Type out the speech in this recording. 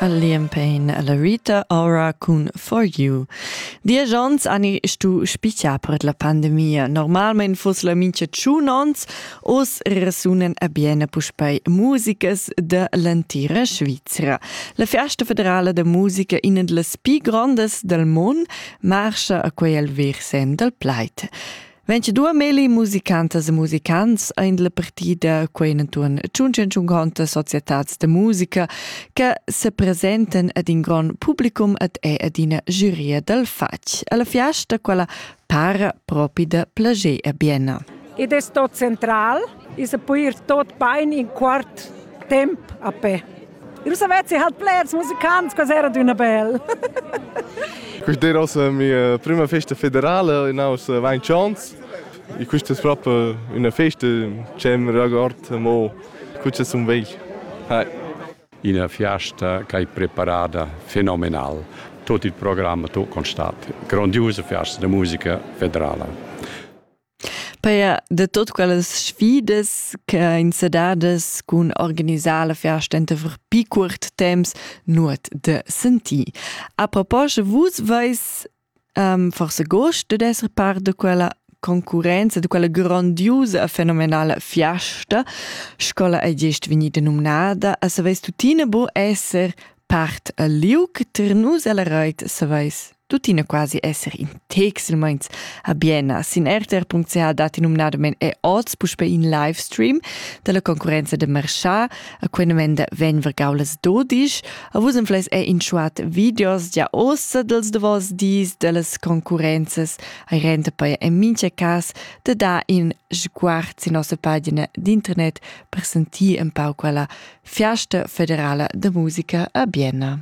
A Liam Payne e la Rita ora cun For You. Diesch onns ani stu spicchar per la pandemia. Normalmein fuss la mincha tschun onns, oz resunen a biene puspei musicas de l'entira Svizra. La Festa federala de musica, ina delle più grandes del mon, marcha a quei al versem del pleit. 22 meli musicantas e musicants ein la partida quei entuorn 150 societats de musica che se presenten ad in gran publicum ed è ad ina giuria dal fatg. Alla fiasta quella para propi da plager a Bienna. Ed è sto central, is a puir tot bein in quart temp a pe. Eu savessi halt pleds musicants, cos'era d'üna bel. Questa era la mia prima festa federale in aus Weinchans. E questa è proprio una festa che mi riguarda mo questa è un vegl. Hi. Una festa che è preparata fenomenal. Tutto il programma tu constat. Grandiosa festa di musica federale. Paja da tuot quellas sfidas ch'ha insadadas cun organisar la fiasta entaver pii cuort temps nuot da sentir. A proposcha, vus vais forsa gust dad esser part da quella concurrenza, da quella grandiusa e fenomenala fiasta, sco'la ei gest vegnida numnada, e saveis tuttina bu esser part al liug, ter nus ella reit saveis. tuttina quasi esser in tex il meins a Bienna. Sin rtr.ch datti numnadament è oz puspè in live stream dalla concorrenza de Marchard. A quella menda vegn vergaulas dodisch. A vus infleis è in schuat videos gia oz dels davos dis dellas concorrenzas ai renta poi in mincha cas de da in sguard sin nossa pagina d'internet per sentir un pau quella fiasta federala de musica a Bienna.